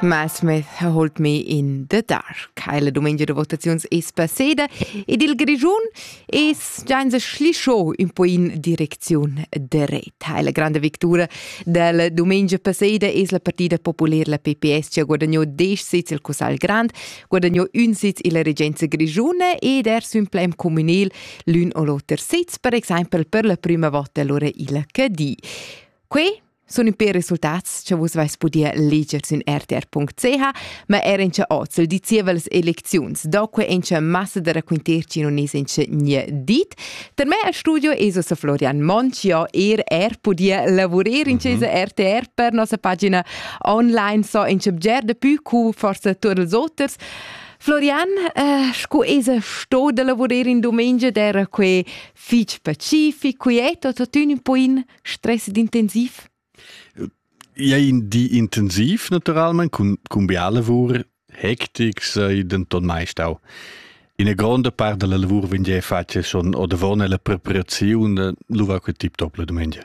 Massmith ha holt me in the dark. Heile domegia de votaziuns es passeda ed il Grischun es gianza schlischo un po in direcziun dret. Heile grande victura del domegia passeda es la partida popular la PPS che ha guadagno 10 sits il Cussagl Grand, guadagno un sits illa regenza grischuna ed er sün plem communal l'un o l'oter sits, per exaimpel per la prima volta allora il Cadi. Que sun ün pêr resultats cha vus vais pudir leger sün rtr.ch, ma era in cha hoz il di zievas elecziuns. Doque in cha massa da raquinterci non es in cha gne dit. Per me al studio es ossa Florian Monch, io er er pudia lavurer in cha esa RTR per nossa pagina online, so in cha bger da pü cu forsa tuot ils oters. Florian, eh, sco esa sto da lavurer in dumengia d'era que fich pacific, quiet o totün un po in? stress d'intensiv? Ja in di intensiv naturalmente con cumbia lavur hectic sei denton meist auch ina gronda part della lavur vegn fatga schon odavon la preparaziun lu va quel tip top la domenica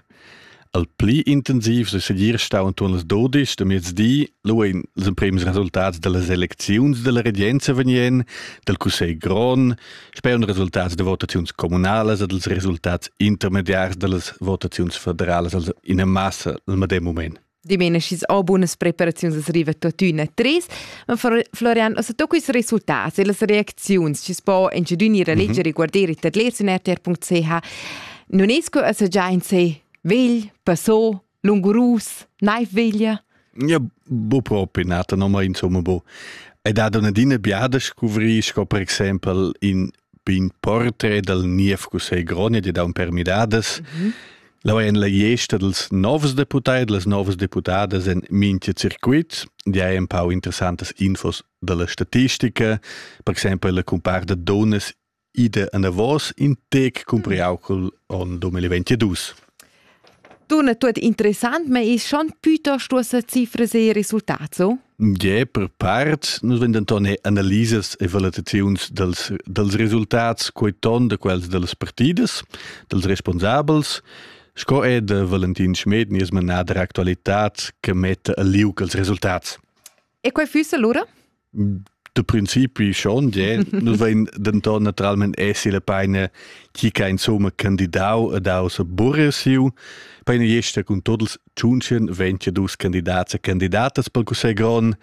al pli intensiv se segir stau anton las dodisch da mezdi lu ein les emprems resultats delle selecziuns della regenza vegnien del cussegl gron Speun resultats de votaziuns comunalas e dels resultats intermediars delles votaziuns federalas in massa al medem moment. Dimena schis o bunas preparaziuns es riva tuottüna tres, ma Florian, as to quis resultats e las reacziuns schis po incedün ir a leger mhm. e guarder il tadler in rtr.ch, non es que as già in se vegl, passò, lungurus, naiv veglia? Ja, bu propi nata no mai insomma bu. Ed ha una dina biada scuvri sco per exempel in pin portrait dal niev Cussegl Gronia di da un per miradas. Mm -hmm. La en la gesta dels novs deputai e las novas deputadas en mintia circuit, di hai un pau interessantes infos dalla statistica, per exempel la compar da donas id è anavos in tec cumpriau col onn 2022. Dunna, tutto interessant, ma è schon piuttosto sa cifras e risultati, so? Ja, per part, nus vegn denton analisas e valutaziuns dels, dels resultats quei ton de quels delles partidas, dels responsabels, sco è de Valentin Schmed nies manada actualitat che mette a liug els resultats. E quei füssa lura? De principi schon, yeah. Nus vein denton naturalment essi la peina chi che insomma candidau ed aus burre siu. Peina jesta cun totals tschunchen venti dus candidats e candidatas pel Cussegl grond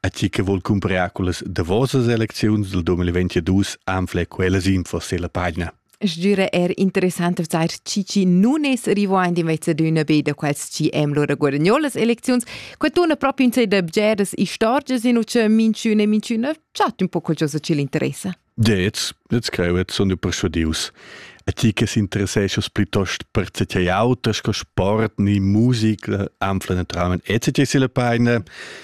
a chi che vol cumprar quellas davosas elecziuns del 2022 anfle quellas info se la pagina. Sgira er interessant vzar cici nun es rewind invece d'üna be da quels chi hem lura guadagnò las elecziuns. Que tuna proprio in se da bgeras istorgias in uce minchün e minchüna chat un po qualcosa chi l'interessa. Jetzt, jetzt creu et sun persuadius. A ti che s'interesseschas plitost per tgei auter sco sport ni musica, anfla naturalmente etc. si la paina,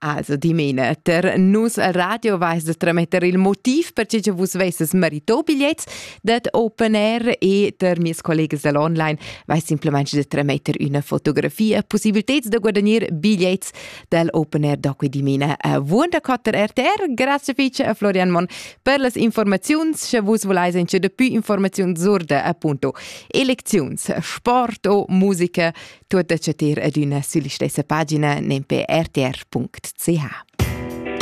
Also dimena, ter nus radio vais de trametter il motiv per che vus vesses merito bigliets dat Open Air e ter mies collegas dall'online vais simplemente de trametter una fotografia possibiliteds de guadagnir bigliets dal Open Air doque dimena a Wunder Cutter RTR. Grazie fece a Florian Mon per las informaziuns che vus voleis en che depui informaziun zurde appunto eleziuns, sport o musica Tuot da chatir adüna sülla stessa pagina nempe rtr.ch.